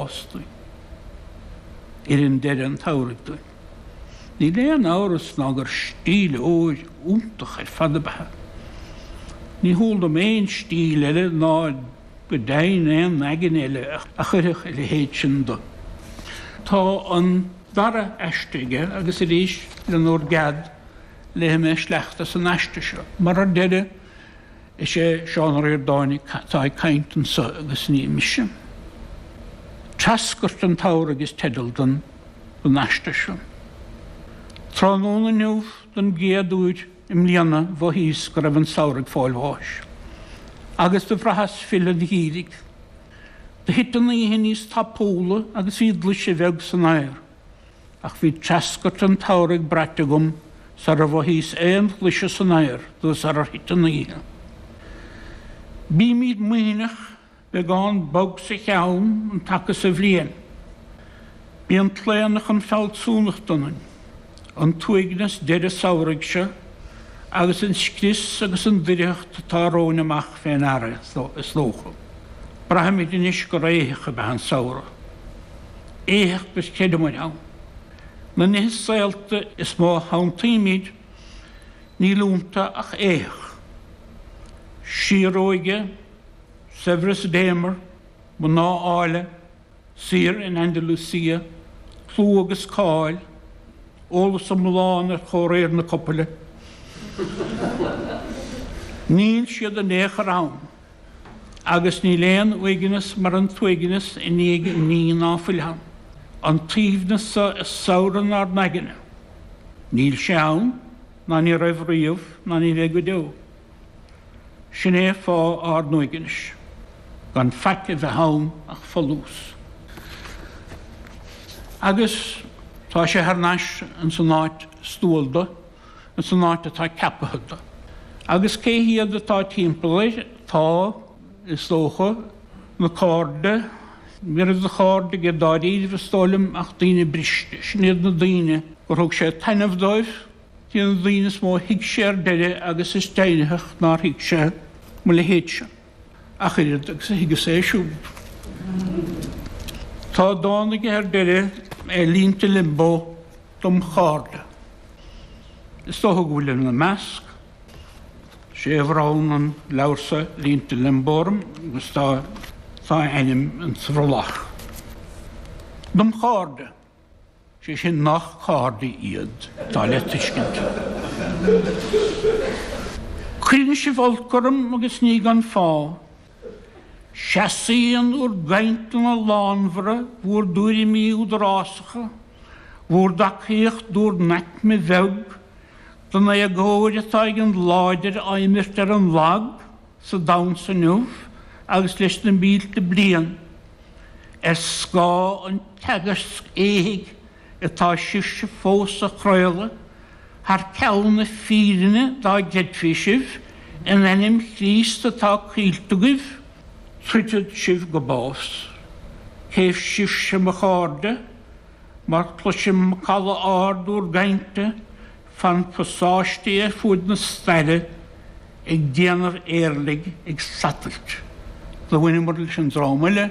fhostaigh i rith deireadh an tsamhraidh dúinn. Níl aon amhras ná gur stíl óir iontach ar fad ab ea. Ní heol dom aon stíl eile ná go deimhin aon aigne eile a chuirfeadh a leithéid sin do. Tá an dara aiste aige agus arís, lenúr gcead, léifidh mé sleachta as an aiste seo, mar ar deireadh, Is é Seán Ó Ríordáin atá ag caint anso agus ní mise. 'Treascairt an tSamhraidh' is teideal don aiste seo. Tráthnóna inniu, don gcéad uair i mbliana, mhothaíos go raibh an samhradh ag fáil bháis. Agus do bhraitheas filleadh an gheimhridh. Do thit an oíche níos tapúla agus bhí glaise bheag san aer. Ach bhí treascairt an tsamhraidh braite agam sara mhothaíos aon ghlaise san aer nó sarar thit an oíche. Bímid maoithneach, beagán bog sa cheann an taca so bhliain. Bíonn claonadh chun fealsúnachta ionainn. An t-uaigneas deireadh samhraidh seo agus an scrios agus an doircheacht atá romhainn amach fé ndeara é, is dócha. Braithimid anois gur éitheach ab ea an samhradh. éitheach agus creidimid ann. Na nithe saolta is mó a shantaímid, níl iontu ach éitheach. Síoróige, saibhreas Déamair, mná áille, saoire in Andalucia, clú agus cáil, eolas iomlán ar chomhréir na copaile. Níl siad in aon chor ann. Agus níl aon uaigneas mar an t-uaigneas i ndiaidh ní ná fuil ann. An t-aoibhneas so i samhradh ár n-aigne, níl sé ann, ná ní raibh riamh, ná ní bheidh go deo. Sin é fáth ár n-uaignis, gan faic a bheith ann ach folús. Agus tá sé thar n-ais ins an áit is dual do. ins an áit atá ceapaithe do, agus cé hiad atá timpeall air, tá, is dócha, na cairde, ní raibh de chairde aige dáiríribh, is dóigh liom, ach daoine briste. Sin iad na daoine gur thug sé taitneamh dóibh, iad na daoine is mó a thuig sé ar deireadh agus is deimhnitheach nár thuig sé mo leithéidse ach oiread agus a thuigeas é siúd. Tá dán aige ar deireadh, i Línte Liombó, Dom Chairde. Is dócha go bhfuilim ina measc, sé a bhronn an leabhar seo, Línte Liombó, orm agus tá a ainm sa bhrollach. Dom Chairde, sé sin nach cairde iad, atá le tuiscint. Cuireann sibh olc orm agus ní gan fáth. Seasaíonn bhur gcainteanna lánmhara, bhur dtuairimí údarásacha, bhur dtacaíocht d'bhur n-aicme bheag, don éagóir atá ag an láidir á imirt ar an lag sa domhan seo inniu agus leis na mílte bliain, ar scáth an teagaisc éithigh atá sibhse fós á chraoladh thar ceann na fírinne dá gcreidfí sibh, in ainm Chríost atá coillte agaibh, troidfead sibh go bás. Cé sibhse mo chairde, mar cloisim macalla ard bhur gcainte fan pasáistí ar fuaid na staire ag déanamh éirligh ag satailt. Do bhaineamar leis an dream uile.